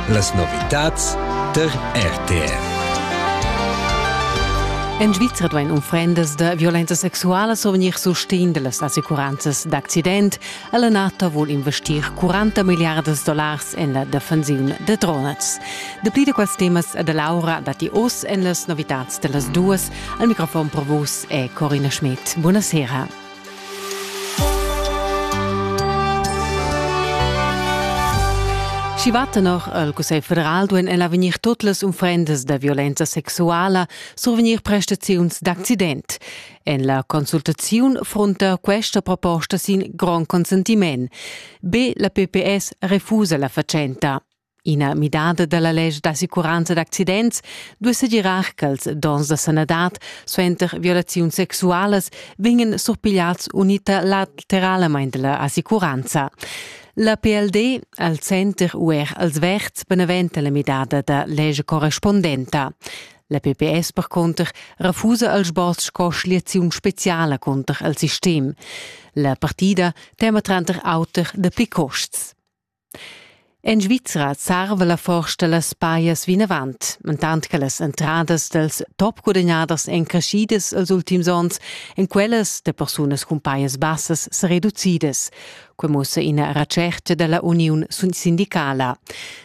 Las novitads der RTR. En Svizra duain unfrendas da violenza sexuala survegnir sustegn da las assicuranzas d'accident. La NATO vul investir 40 milliardas dollars en la defensiun da drones. Dapli da quels temas da Laura datti oz en las novitads da las duas. Al microfon per vus è Corina Schmidt. Buonasera. Schi va tenor al Cussegl federal duein ella vegnir tut las unfrendas da violenza sexuala survegnir prestaziuns d'accident. En la consultaziun frunta questa proposta sin grond consentiment. Be la PPS refusa la fatschenta. Ina midada dalla lège d'assicuranza d'accidents duei segirar ch'ils donns da sanadad suenter violaziuns sexualas vegnan surpigliads unita lateralmein dalla assicuranza. La PLD al center u er als verds beneventa la midada da lège correspondenta. La PPS per conter refusa al sboz sco schliaziun speciala conter il sistem. La partida tema tranter auter de pli costs. En Svizra sarva la forsta las pajas vinavant, mentant che las entradas dals topgudagnaders èn creschidas els ultims onns, en quellas da persunas cun pajas bassas sa reducidas. Quai mussa ina retschertga da la uniun sindicala.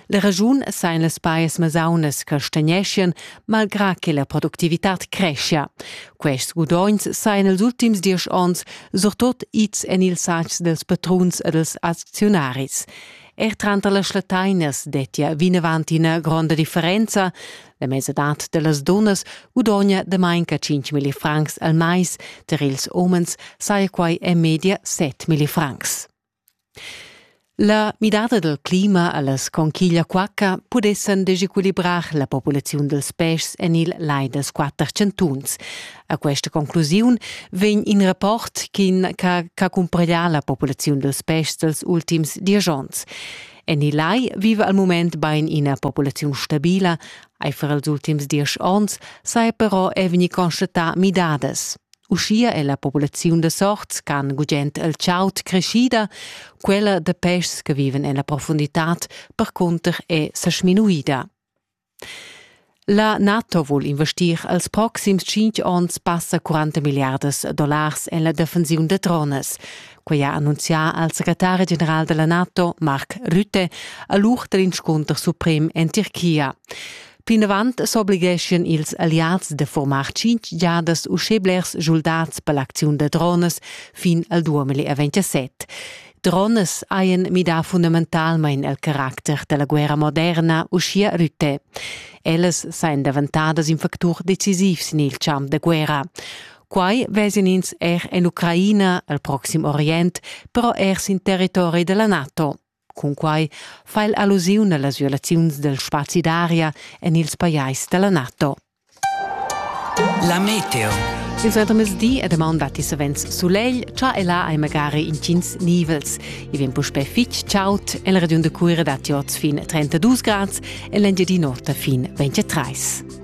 La raschun sain las pajas masaunas che stegneschian malgrà che la productivitad creschia. Quests gudogns sajan els ultims diesch onns surtut ids en ils satgs dels patruns e dels acziunaris. Er tranter las latainas dettia vinavant ina gronda differenza. La mesadad da las dunnas gudogna da manca 5 milli francs al mais, tar ils umens saja quai en media 7 milli francs. La midada dal clima a las conchiglia quacca pudessan desequilibrar la populaziun dals peschs en il lai dals quatter chantuns. A questa conclusiun vegn in rapport ch'ha cumpraglià la populaziun dals peschs dals ultims diesch onns. En il lai viva al mument bain ina populaziun stabila, aifer ils ultims diesch onns saja però è vegnì constatà midadas. Uschia è la populaziun da sorts ch'han gugent el chaud creschida, quella da peschs che viven en la profunditad percunter è sa sminuida. La NATO vul investir als proxims tschintg onns passa 40 milliardas dollars en la defensiun da drones. Quai ha annunzià al secretari general della NATO, Mark Rutte, a l'ur dell'inscunter suprem en Tirchia. Plinavant s'obligheschien ils alliads da formar tschintg giadas uschè blers schuldats per l'acziun da dronas fin al 2027. Dronas hajan midà fundamentalmain il caracter da la guerra moderna, uschia Rutte. Ellas sajan davantadas in factur decisiv sin il champ da guerra. Quai vesien ins er en Ucraina, al Proxim Orient, però er sin territori da la NATO. Cunquai fa el allusiun a las violaziuns dal spazi d'aria en ils pajais da la NATO. La meteo. Il suentermezdi e damaun datti savens sulegl, cha e là hai magari intgins nivels. I vegn puspè fitg chaud e la regiun da Cuira datti oz fin 32 grads e l'Engiadin'Ota fin 23.